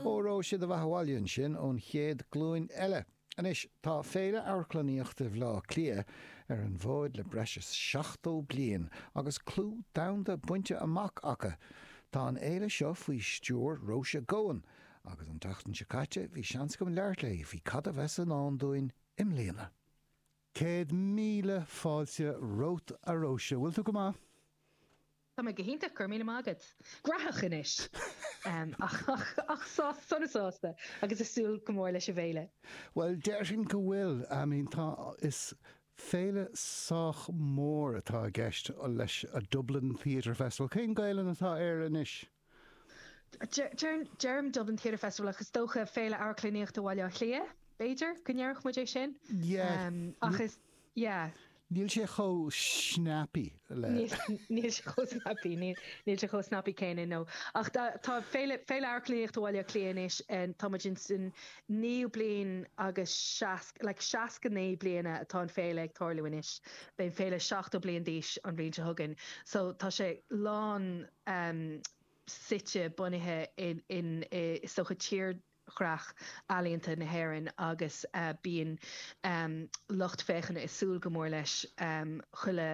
Óró sé do bheatha abhaile ansin ón chéad glúin eile. Anois, tá Féile Amharclannaíochta Bhleá Cliath ar an bhfóid le breis is 70 bliain agus clú domhanda bainte amach acu. Tá an fhéile seo faoi stiúir Róise Goan agus an tseachtain seo caite bhí seans agam labhairt léi faoi cad a bheas i ndán dúinn i mbliana. Céad míle fáilte romhat a Róise, bhfuil tú go maith? Tá mé go hiontach, go raibh míle maith agat. Gnóthach anois, ach sona sásta agus ag súil go mór leis an bhféile. Bhuel, déarfainn go bhfuil. I mean, tá, is féile sách mór atá i gceist leis, Dublin Theatre Festival. Cén Ghaelainn atá air anois? Deirim Dublin Theatre Festival ach is dócha Féile Amharclannaíochta Bhaile Átha Cliath, b'fhéidir, go ndéarfadh muid é sin ach is, yeah. Níl sé chomh snappy le. Níl sé chomh snappy, níl sé chomh snappy céanna, no. Ach tá Féile Amharclannaíochta Bhaile Átha Cliath anois, tá muid ins an naoú bliain agus seasc, like seasca naoi bliana atá an Féile ag tarlú anois, beidh an Féile seachtó bliain d'aois an bhliain seo chugainn, so tá sé lán, um suite bunaithe in, is dócha, tírdhreach ealaíonta na hÉireann agus bíonn um lucht féachana ag súil go mór leis um chuile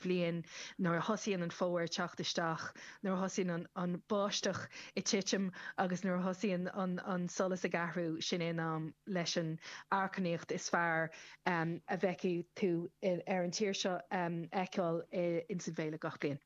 bhliain nuair a thosaíonn an fómhar ag teacht isteach, nuair a thosaíonn an an bháisteach ag titim agus nuair a thosaíonn an an solas ag athrú, sin é an am leis an amharclannaíocht is fearr um a bhfeicfidh tú ar an tír seo a fheiceáil ins an bhféile gach bliain.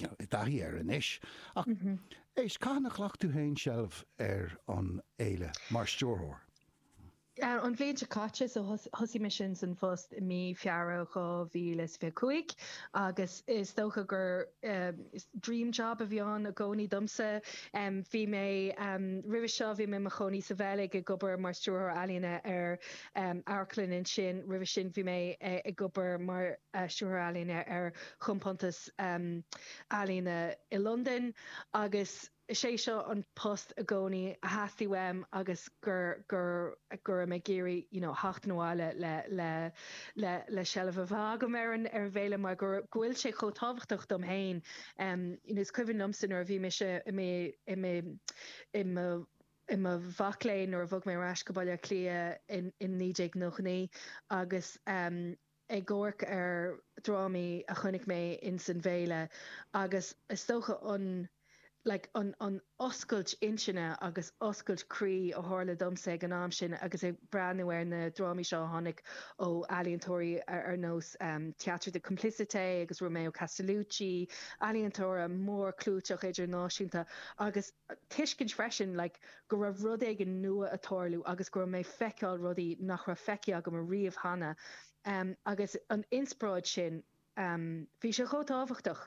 I dtaithí air anois, ach éist, cathain a ghlac tú féin seilbh ar an fhéile mar stiúrthóir? An bhliain seo caite, so thosaigh mé insan phost i mí Feabhra 2025 agus is dócha gur dream job a bhí ann i gcónaí domsa. Bhí mé, roimhe seo, bhí mé i mo chónaí sa Bheilg ag obair mar stiúrthóir ealaíne ar amharclann ansin, roimhe sin bhí mé ag obair mar stiúrthóir ealaíne ar chompántas, ealaíne i Londain agus is é seo an post i gcónaí a theastaigh uaim agus go raibh mé ag iarraidh you know theacht abhaile le seilbh a bheith agam ar an bhféile mar go bhfuil sé chomh tábhachtach dom féin. Is cuimhin liomsa nuair a bhí mise i mo mhac léinn nuair a bhog mé ar ais go Baile Átha Cliath in 1999 agus ag amharc ar dhrámaí a chonaic mé ins an bhféile agus is dócha an like an an oscailt intinne agus oscailt croí a tharla domsa ag an am sin agus ag breathnú ar na drámaí seo a tháinig ó ealaíontóirí ar nós Theatre de Complicité agus Romeo Castellucci, ealaíontóirí mórchlúiteacha idirnáisiúnta agus. tuiscint freisin like go raibh rud éigin nua a' tarlú agus go raibh mé a' feiceáil rudaí nach raibh feicthe agam a riamh cheana ehm agus an inspioráid sin ehm bhí sé chomh tábhachtach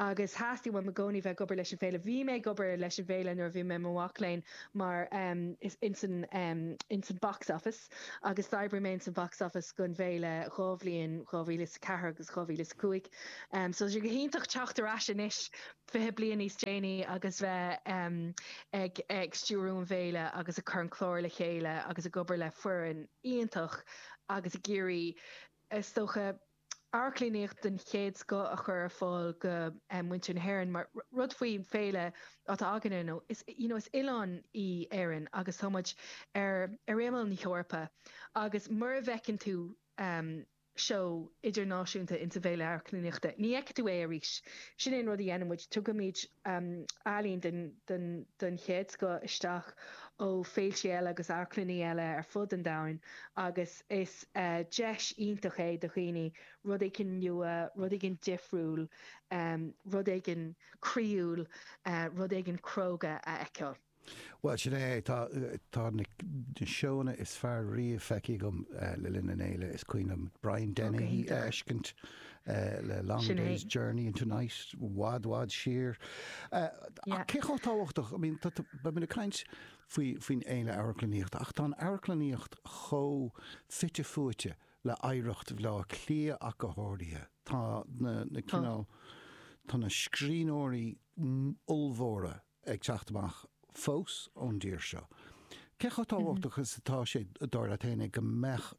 agus theastaigh uaim i gcónaí bheith ag obair leis an bhféile, bhí mé ag obair leis an bhféile nuair a bhí mé i mo mhac léinn mar ehm ins an ehm ins an box office agus d'oibrigh mé ins an box office gon bhféile dhá bhliain 2004 agus 2005 ehm so tá sé go hiontach teacht ar ais anois 20 bliain níos déanaí agus bheith ag stiúrú an bhféile agus ag cur an clár le chéile agus ag obair le foireann iontach agus ag iarraidh, is dócha, amharclannaíocht den chéad scoth a chur ar fáil go muintir na hÉireann. Mar rud faoi féile atá againne, you know, is oileán í Éireann agus tá muid ar imeall na hEorpa agus mura bhfeiceann tú, you seó idirnáisiúnta in sa bhféile amharclannaíochta. Ní fheicfidh tú é arís. Sin é an rud a dhéanann muid, tugaimid ealaín den, den, den chéad scoth isteach ó fhéiltí eile agus amharclannaí eile ar fud an domhain agus is deis iontach é do dhaoine rud éigin nua, rud éigin difriúil, rud éigin croíúil, rud éigin cróga a fheiceáil. Bhuel, sin é é. Tá, tá na seóanna is fearr riamh feicthe agam le linn an fhéile. Is cuimhin liom Brian Dennehy a fheiscint le Long Day's Journey into Night, i bhfad, i bhfad siar. Ach cé chomh tábhachtach, I mean, beidh muid ag caint faoi, faoin Fhéile Amharclannaíochta, ach tá an amharclannaíocht chomh fite fuaite le oidhreacht Bhleá Cliath ach go háirithe. Tá na, na cineál, tá na scríbhneoirí ollmhóra ag teacht amach fós ón dtír seo. Cé chomh tábhachtach is atá sé, dar leat fhéinig, go mbeadh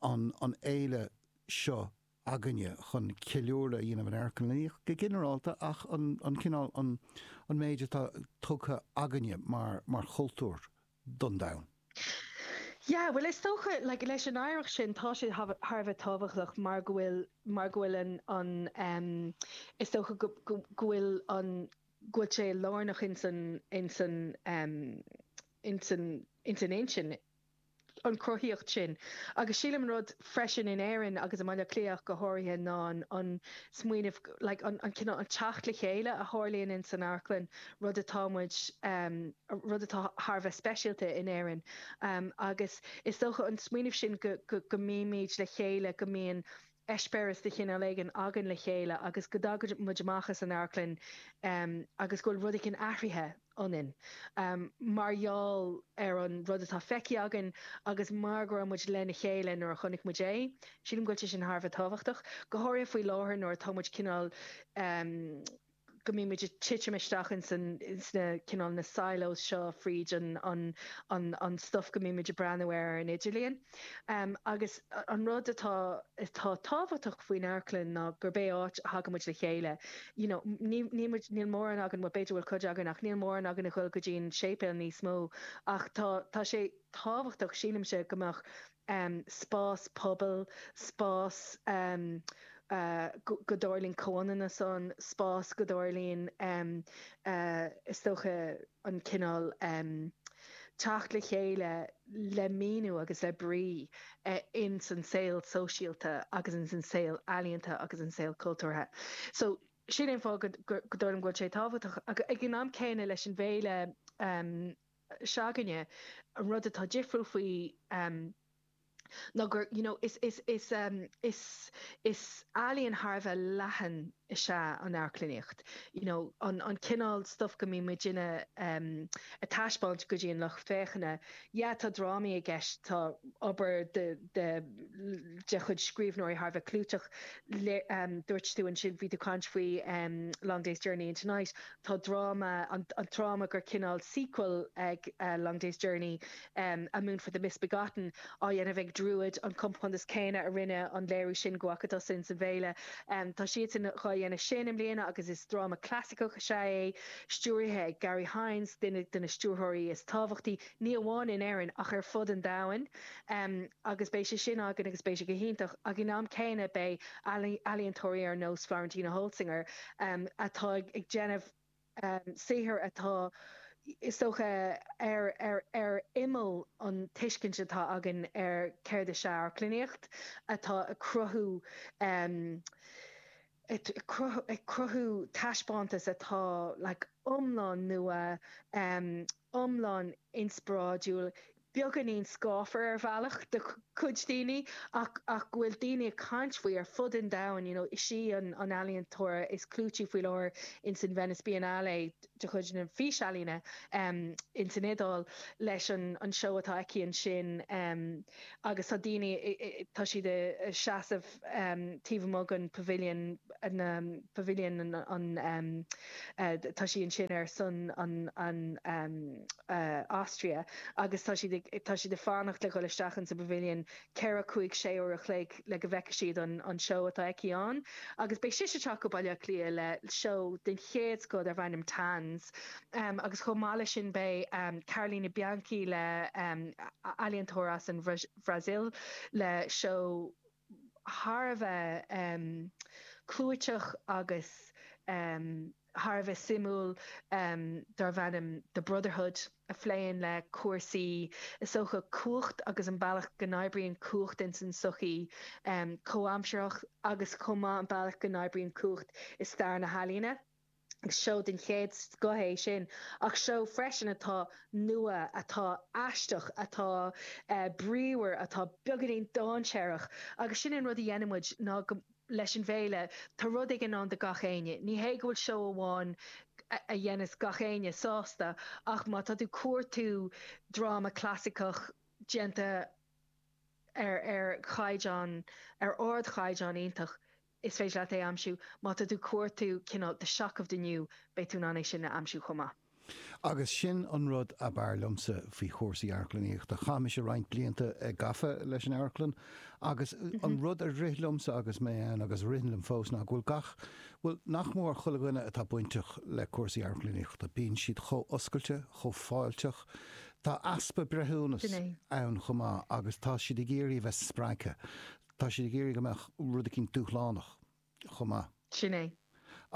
an fhéile seo againne chun ceiliúradh a dhéanamh ar amharclannaíocht go ginearálta ach an cineál, an méid atá tugtha againne mar chultúr don domhan? Yeah, bhuel is dócha, like, leis an oidhreacht sin tá sé thar a bheith tábhachtach mar go bhfuil, mar go bhfuil an, is dócha go bhfuil an, go bhfuil sé lárnach ins an, ins an, ins an, ins an intinn, an chruthaíocht sin. Agus sílim an rud freisin in Éirinn agus i mBaile Átha Cliath ach go háirithe ná an, an smaoineamh, like, an, an cineál, an teacht le chéile a tharlaíonn ins an amharclann, rud atá muid, rud atá thar a bheith speisialta in Éirinn. Agus is dócha an smaoineamh sin go, go, go mbímid le chéile, go mbíonn eispéireas de chineál éigin againn le chéile agus go dtagann muid amach as an amharclann agus go bhfuil rud éigin athraithe ionainn mar gheall ar an rud atá feicthe againn agus mar go raibh muid lena chéile nuair a chonaic muid é. Sílim go bhfuil sé sin thar a bheith tábhachtach, go háirithe faoi láthair nuair atá muid cineál. go mbíonn muid ag titim isteach ins an, ins na, cineál na silos seo fríd an, an, an, an stuif go mbíonn muid ag breathnú air ar an idirlíon. Agus an rud atá, atá tábhachtach faoin amharclann ná gurb é áit a dtagann muid le chéile. You know, ní, níl muid, níl mórán againn, bhuel b'fhéidir go bhfuil cuid againn ach níl mórán againn ag goil go dtí an séipéal níos mó ach tá, tá sé tábhachtach, sílimse, go mbeadh, spás pobail, spás go dtarlaíonn comhionannas ann, spás go dtarlaíonn, is dócha, an cineál teacht le chéile le míniú agus le brí ins an saol sóisialta agus ins an saol ealaíonta agus an saol cultúrtha. So, sin é an fáth go dtarlaíonn go bhfuil sé tábhachtach. Ag an am céanna leis an bhféile. s'againne. An rud atá difriúil faoi ná gur, you know, is, is, is, is, is ealaíon thar a bheith leathan is ea an amharclannaíocht, you know, an, an cineál stuif go mbíonn muid in ann a thaispeáint go dtí an lucht féachana. Yeah, tá drámaí i gceist, tá obair de, de, de chuid scríbhneoirí thar a bheith clúiteach, le, dúirt tú ansin, bhí tú ag caint faoi Long Day's Journey into Night, Tá dráma, an dráma gur cineál sequel ag Long Day's Journey, A Moon for the Misbegotten, á dhéanamh ag Druid, an compántas céanna a rinne an léiriú sin deich mbliana ó shin sa bhféile. Tá siadsan dhá dhéanamh sin i mbliana agus is dráma clasaiceach is ea é, stiúraithe ag Garry Hynes, duine de na stiúrthóirí is tábhachtaí, ní amháin in Éirinn ach ar fud an domhain. em, agus beidh sé sin againn agus beidh sé go hiontach ag an am céanna beidh ealaíontóirí ar nós Florentina Holzinger, em, atá ag déanamh, em, saothar atá, is dócha, ar, ar, ar imeall an tuiscint atá againn ar céard is ea amharclannaíocht, atá ag cruthú, em, ag cruthú, ag cruthú taispeántas atá like iomlán nua, em, iomlán inspioráidiúil, beagáinín scáfar ar bhealach do chuid daoine ach go bhfuil daoine ag caint faoi ar fud an domhain, you know is í an ealaíontóir is clúití faoi láthair ins an Venice Biennale de chuid na físealaíne ins an Iodáil leis an seó atá aici ansin agus tá daoine, tá siad a' seasamh. taobh amuigh den Pavilion, na, Pavilion an, an ehm, tá sí ansin ar son an, an ehm, Austria agus tá siad ag, tá siad ag fanacht le dhul isteach insa bPavilion ceithre, cúig, sé uair a chloig le go bhfeicfidh siad an, an seó atá aici ann agus beidh sise ag teacht go Baile Átha Cliath le seó den chéad scoth darb ainm Tanz ehm agus chomh maith leis sin beidh ehm Carolina Bianchi le ehm, ealaíontóir as an Brasaíl le seó. thar a bheith clúiteach agus thar a bheith suimiúil darb ainm The Brotherhood a phléann le cúrsaí, is dócha, cumhacht agus an bealach go n-oibríonn cumhacht ins an tsochaí chomhaimseartha agus chomh maith an bealach go n-oibríonn cumhacht i stair na healaíne. Seó den chéad scoth é sin, ach seó freisin atá nua, atá aisteach, atá bríomhar, atá beagáinín dáinséarach, agus sin an rud a dhéanann muid, ná, leis an bhféile, tá rud éigin ann do gach éinne. Ní hé go bhfuil seó amháin a dhéanfas gach éinne sásta, ach má tá tú cuartú dráma clasaiceach déanta ar caighdeán, ar ardchaighdeán iontach, Is féidir leat é a aimsiú, má tá tú cuartú cineál The Shock of the New, beidh tú in ann é sin a aimsiú chomh maith. Agus sin an rud ab fhearr liomsa faoi chúrsaí amharclannaíochta. Chaith mise roinnt blianta gafa leis an amharclann agus an rud a rith liomsa agus mé ann, agus a ritheann liom fós, ná go bhfuil gach, bhuel, nach mór chuile dhuine atá bainteach le cúrsaí amharclannaíochta, bíonn siad chomh oscailte, chomh fáilteach. Tá easpa breithiúnas ann chomh maith agus tá siad ag iarraidh a bheith spreagtha. Tá siad ag iarraidh go mbeadh rud eicínt dúshlánach chomh maith. Sin é.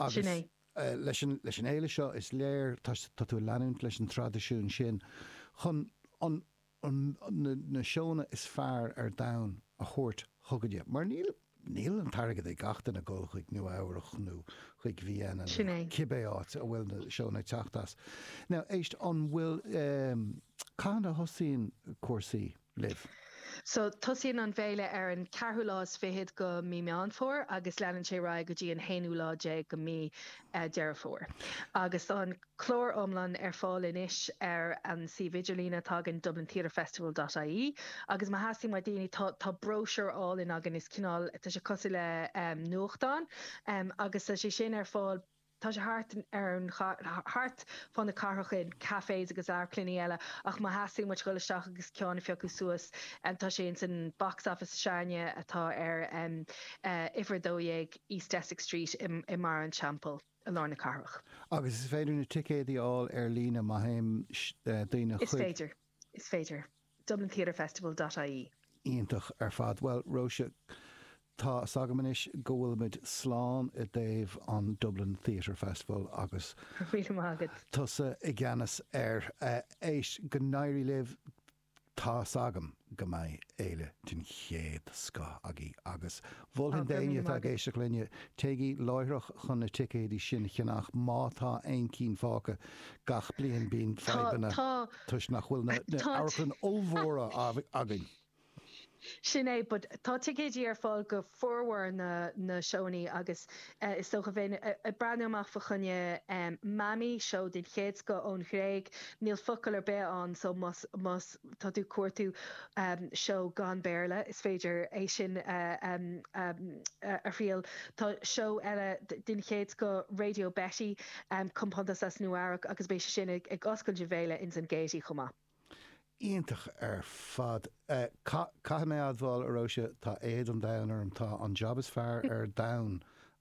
Sin é. Agus leis an fhéile seo, is léir, tá tú ag leanúint leis an traidisiún sin chun na seónna is fearr ar domhan a thabhairt chugainne. Mar níl an t-airgead ag gach duine dul chuig Nua Eabhrach nó chuig Vienna nó cibé áit a bhfuil na seónna ag teacht as. Now, éist, an bhfuil, cathain a thosaíonn cúrsaí? So, tosaíonn an bhféile ar an ceathrú lá is fichead de Mí Meán Fómhair agus leanann sé ar aghaidh go dtí an haonú lá déag de Mí Deireadh Fómhair. Agus tá an clár iomlán ar fáil anois ar an suíomh idirlíne atá againn, dublintheatrefestival dot ie, agus má theastaíonn ó daoine, tá, tá bróisiúr álainn againn, is cineál, tá sé cosúil le nuachtán, agus tá sé sin ar fáil. Tá sé thart ar an chath, thart fá na cathrach i gcaiféanna agus amharclannaí eile, ach má theastaíonn uait dhul isteach agus ceann a phiocadh suas, tá sé ins an Box Office s'againne atá ar uimhir 12 East Essex Street i mBarra an Teampaill, i lár na cathrach. Agus is féidir na ticéidí a fháil ar líne má théann daoine chuig. Is féidir. Is féidir. dublintheatrefestival dot ie. Iontach ar fad. Bhuel, Róise, tá 's agam anois go bhfuilimid slán i dtaobh an Dublin Theatre Festival agus tusa i gceannas air. Éist, go n-éirí libh, tá 's agam go mbeidh féile den chéad scoth againn agus Mholfainn d'éinne atá ag éisteacht linne, téigí láithreach chun na ticéidí sin a cheannach má tá aon chinn fágtha. Gach bliain bíonn fadhbanna toisc nach bhfuil na hamharclanna ollmhóra againn. Sin é, but tá ticéidí ar fáil go formhór na seóannaí agus is dócha, bheinn ag breathnú amach fá choinne Mami, seó den chéad scoth ón Ghréig, níl focail ar bith ann so más, más, tá tú ag cuartú seó gan Béarla, is féidir é sin a thriail. Tá seó eile den chéad scoth, Radio Betty, compántas as Nua Eabhrac, agus beidh sé sin ag oscailt na féile ins an Gaiety chomh maith. Iontach ar fad. Caithfidh mé a admháil, a Róise, tá éad an domhain orm, tá an jab is fearr ar domhan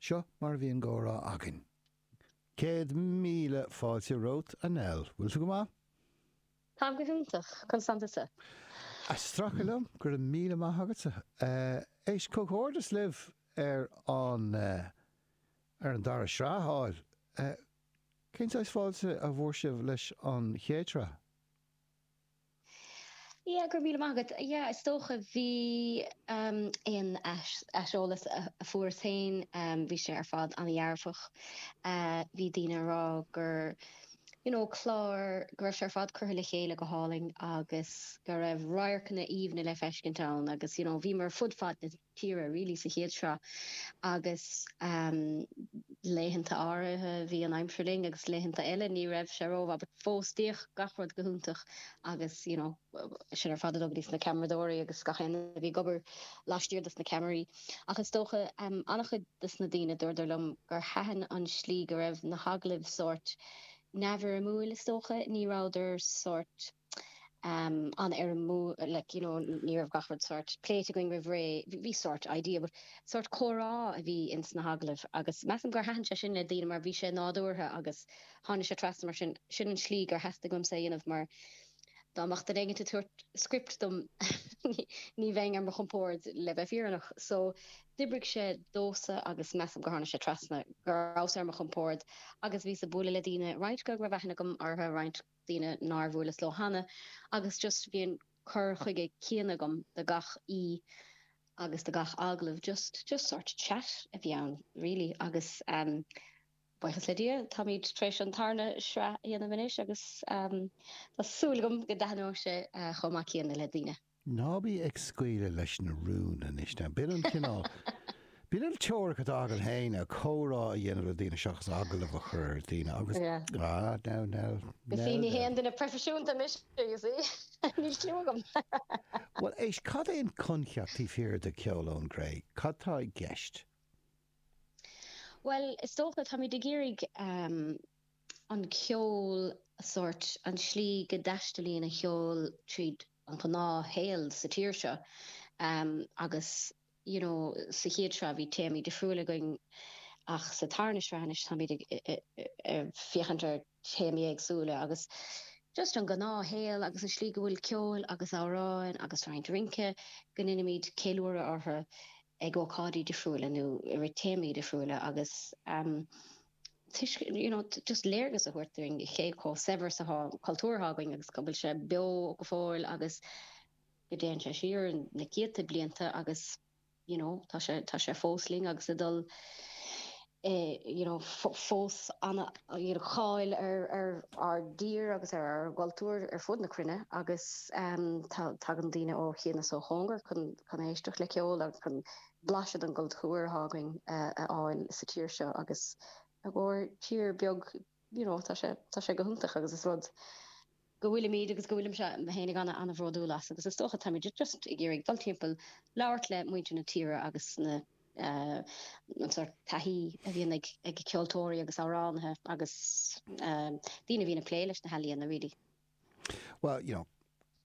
Seo mar a bhí an gcomhrá againn. Céad míle fáilte romhat, a Nell. Bhfuil tú go maith? Táim go hiontach, Seán, tá an-áthas orm a bheith libh, go raibh míle maith agatsa. Éist, comhghairdeas libh ar an ar an dara sraith a fháil. Cén saghas fáilte a bhfuair sibh leis an chéad sraith? Yeah, go raibh míle maith agat. Yeah, is dócha, bhí aon aiseolas a fuaireas féin, bhí sé ar fad an-dhearfach. Bhí daoine a rá gur, you know, clár, go raibh sé ar fad curtha le chéile go hálainn agus go raibh radharcanna aoibhne le feiscint ann agus, you know, bhíomar fud fad na. tíre really sa chéad sraith agus laethanta áirithe bhí an aimsir linn agus laethanta eile ní raibh sé rómhaith but fós bhíodh gach rud go hiontach agus you know sin ar fad a bhuíochas dos na ceamaradóirí agus gach éinne a bhí ag obair laistiar dos na ceamaraí ach is dócha an-chuid dos na daoine dúradar liom gur thaitin an tslí go raibh na hagallaimh sórt neamhfhoirmiúil is dócha ní rabhadar sórt an-fhoirmiúil, like, you know, ní raibh gach rud sórt pléite againn roimh ré, bhí sórt idea, but sórt comhrá a bhí ins na hagallaimh agus measaim gur thaitin sé sin le daoine mar bhí sé nádúrtha agus tháinig sé trasna mar sin, sin an tslí gur theastaigh uaimse é a dhéanamh mar dá mbeadh duine éigint ag tabhairt script dom ní bheinn ar mo chompórd le bheith fíreannach so d'oibrigh sé domhsa agus measaim gur tháinig sé trasna go rabhas ar mo chompórd agus bhíos ag bualadh le daoine roinnt go raibh aithne agam orthu roinnt daoine nár bhuaileas leo cheana, agus just bhí an cur chuige céanna agam do gach aoi agus do gach agallamh, just, just sort chat a bhí ann really, agus buíochas le Dia táimid tar éis an tarna sraith a dhéanamh anois agus tá súil agam go dtaitneoidh sé chomh maith céanna le daoine. Ná bí ag scaoileadh leis na rúin anois now. B'in an cineál, b'in an teoiric atá agam fhéin, comhrá a dhéanamh le daoine seachas agallamh a chur ar dhaoine agus ah, now, now, now, now. Ní haon duine proifisiúnta mise, you see. Níl cliú agam. Bhuel, éist, cad é an coincheap taobh thiar de Ceol ón gCré? Cad tá i gceist? Bhuel, is dócha, táimid ag iarraidh an ceol, sórt, an tslí go dtaistealaíonn an cheol tríd an ghnáthshaol sa tír seo agus you know sa chéad sraith bhí téamaí difriúil againn ach sa tarna sraith anois táimid ag féachaint ar théamaí éagsúla agus just an gnáthshaol agus an slí go bhfuil ceol agus amhráin agus roinnt rince go ndeinimid ceiliúradh orthu ag ócáidí difriúla nó i rith téamaí difriúla agus. tuiscint, you know just léargas a thabhairt dúinn ar cé chomh saibhir is atá an cultúr atá againn agus go bhfuil sé beo go fóill agus go dtéann sé siar na céadta blianta agus you know tá sé tá sé fós linn agus ag dul ah, you know, fós ana cháil ar ar ár dtír agus ar ár gcultúr ar fud na cruinne agus em tagann daoine ó chian is ó chóngar chun chun éisteacht le ceol agus chun blaiseadh den gcultúr atá againn a fháil sa tír seo agus ár tír beag you know tá sé tá sé go hiontach agus is rud go bhfuilimid agus go bhfuilimse fhéinig ana ana bhródúil as agus is dócha táimid just ag iarraidh dul timpeall labhairt le muintir na tíre agus na an sórt taithí a bhíonn ag ag ceoltóirí agus amhránaithe agus daoine a bhíonn ag plé leis na healaíona really. Well you know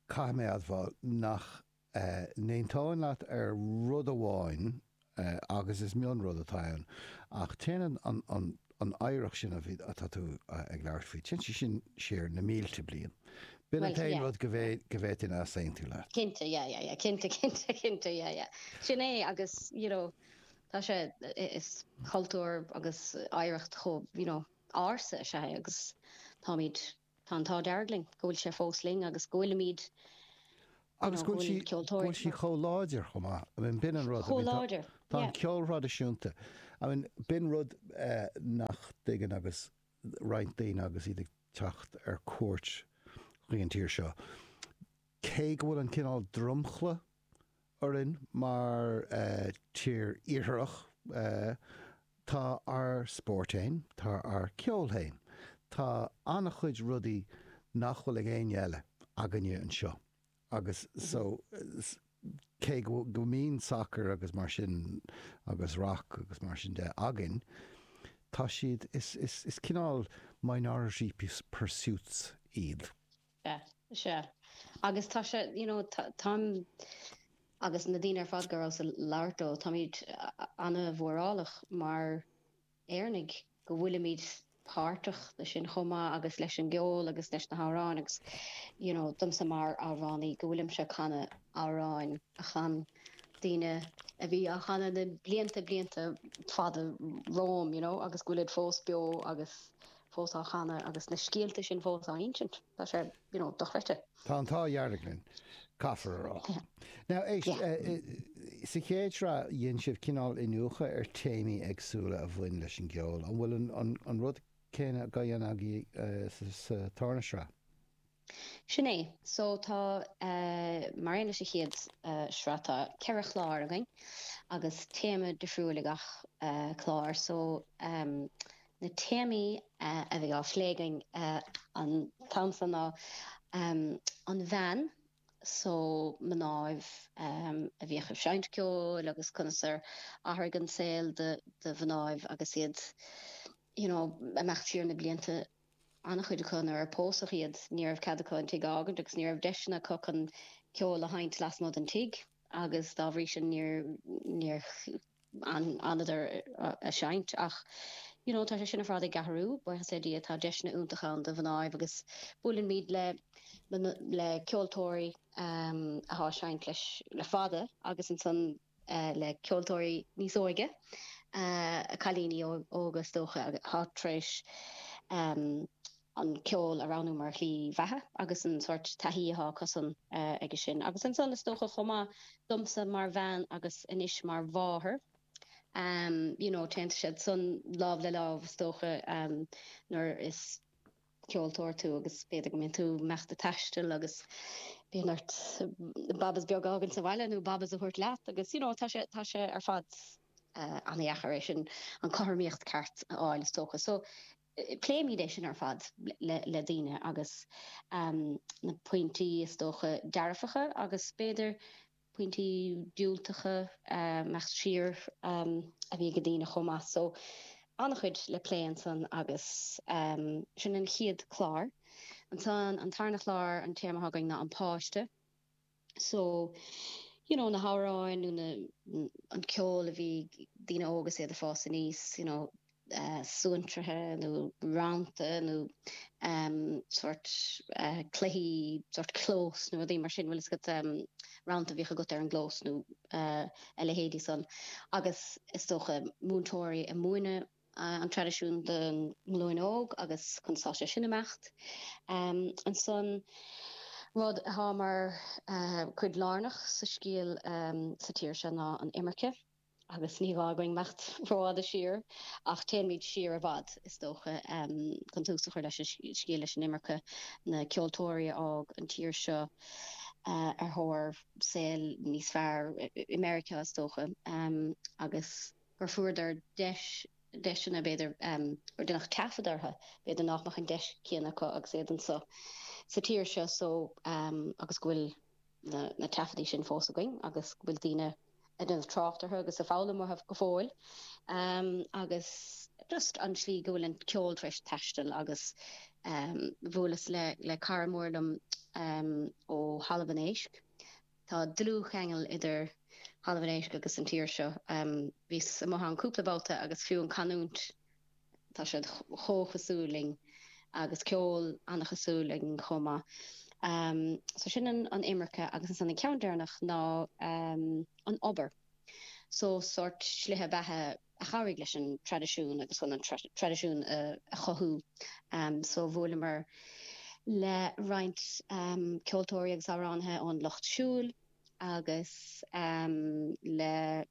caithfidh mé admháil nach n-aontóinn leat ar rud amháin, agus is mionrud atá ann, ach téann an oidhreacht sin atá tú ag labhairt faoi, téann sé sin siar na mílte bliain. B'in an t-aon rud go bhféadfainn easaontú leat. Cinnte, yeah, yeah, yeah, cinnte, cinnte, cinnte, yeah, yeah. Sin é agus, you know, tá sé, is cultúr agus oidhreacht chomh, you know, ársa is ea é agus táimid, Tá an t-ádh dearg linn go bhfuil sé fós linn agus go bhfuilimid, you know, go bhfuil ceoltóirí anseo. Agus go bhfuil sí chomh láidir chomh maith. I mean, b'in an rud. Chomh láidir, yeah. Tá an ceol thraidisiúnta, I mean, b'in rud nach dtuigeann roinnt daoine agus iad ag teacht ar cuairt go dtí an tír seo. Cé go bhfuil an cineál dromchla orainn mar tír iartharach. Tá ár spórt fhéin, tá ár ceol fhéin, tá ana-chuid rudaí nach bhfuil ag éinne eile againne anseo agus so cé go mbíonn sacar agus mar sin agus rac agus mar sin de againn, tá siad, is cineál minority pursuits iad. Sea. Sea. Agus tá sé, you know, táim, agus na daoine ar fad go rabhas ag labhairt leo, táimid ana-mhórálach mar Éireannaigh go bhfuilimid páirteach leis sin chomh maith agus leis an gceol agus leis na hamhráin agus, you know, domsa mar amhránaí go bhfuilimse ag canadh amhráin a chan daoine a bhí á chanadh na blianta, blianta fada romham, you know, agus go bhfuilid fós beo agus fós á chanadh agus na scéalta sin fós á n-insint. Tá sé, you know, dochreidte. Tá an t-ádh dhearg linn, caithfear a rá. Now, éist, sa chéad shraith dhein sibh cineál iniúchadh ar théamaí éagsúla a bhain leis an gceol, an bhfuil an rud céanna á dhéanamh agaibh sa tarna shraith? Sin é. So tá, mar aon leis an chéad shraith, tá ceithre chlár againn agus téama difriúil ag gach clár. So na téamaí a bheidh á phlé againn an t-am so ná an bhean, so mnáibh a bhíodh ag seinnt ceoil agus conas ar athraigh an saol do mhnáibh agus iad, you know, ag imeacht siar na blianta. An-chuid acu, nuair a pósadh iad, ní raibh cead acu an tigh a fhágaint agus ní raibh deiseanna acu chun ceol a sheinnt lasmuigh den tigh agus dá bhrí sin níor fhanadar ag seinnt ach you know tá sé sin ar fad ag athrú, buíochas le Dia, tá deiseanna iontacha ann do mhnáibh agus buailimid le ceoltóirí atá ag seinnt le, le fada agus ansan. le ceoltóirí níos óige, cailíní óga is dócha, atá tar éis an ceol a roghnú mar shlí bheatha agus an sórt taithí atá acusan aige sin. Agus ansan, is dócha chomh maith, domsa mar bhean agus anois mar mháthair, you know, téann siad san lámh le lámh is dócha nuair is. ceoltóir tú agus b'fhéidir go mbíonn tú meallta taisteal agus bíonn ort babas beag a fhágaint sa bhaile nó babas a thabhairt leat agus you know tá sé, tá sé ar fad ana-dheacair é sin, an chothromaíocht ceart a fháil is dócha so pléimid é sin ar fad le daoine agus na pointí is dócha dearfacha agus b'fhéidir pointí diúltacha ag imeacht siar a bhí ag daoine chomh maith. So, an-chuid le plé ansan agus sin an chéad chlár. Ansan an tarna chlár, an téama atá againn ná an páiste. So, you know, na hamhráin nó na, an ceol a bhí ag daoine óga is iad ag fás aníos, you know, suantraithe nó rannta nó sórt cluichí, sórt clós nó rudaí mar sin, bhfuil fhios agat, rannta a bhíodh agat ar an gclós nó a leithéidí san agus is dócha múinteoirí a' múineadh an traidisiún don nglúin óg agus chun sásamh sin, imeacht. Ansan rud athá mar chuid lárnach sa scéal sa tír seo ná an imirce. agus ní gá dhúinn imeacht rófhada siar, ach téanfaimid siar i bhfad, is dócha, chun tús a chur leis an scéal, leis an imirce, na ceoltóirí a fhág an tír seo ar thóir saol níos fearr, i Meiriceá, is dócha, agus go bhfuaireadar deis, deiseanna, b'fhéidir, gur deineadh taifead orthu, b'fhéidir nach mbeadh an deis chéanna acu agus iad anseo sa tír seo, so, agus go bhfuil. na taifeadtaí sin fós againn agus go bhfuil daoine ag déanamh trácht orthu agus ag foghlaim uathu go fóill agus just an tslí go bhfuil an ceol tar éis taisteal agus bhuaileas le cara mór liom ó Thalamh an Éisc, tá dlúthcheangal idir Thalamh an Éisc agus an tír seo, bhíos amuigh ann cúpla babhta agus fiú an canúint Tá siad chomh cosúil linn. Agus ceol an-chosúil againn chomh maith. So sin an imirce agus ansan an ceann deireanach ná an obair. So sórt slithe beatha a chabhraigh leis an traidisiún agus chun an traidisiún a chothú. So bhuaileamar le roinnt ceoltóirí agus amhránaithe ón lucht siúil agus le.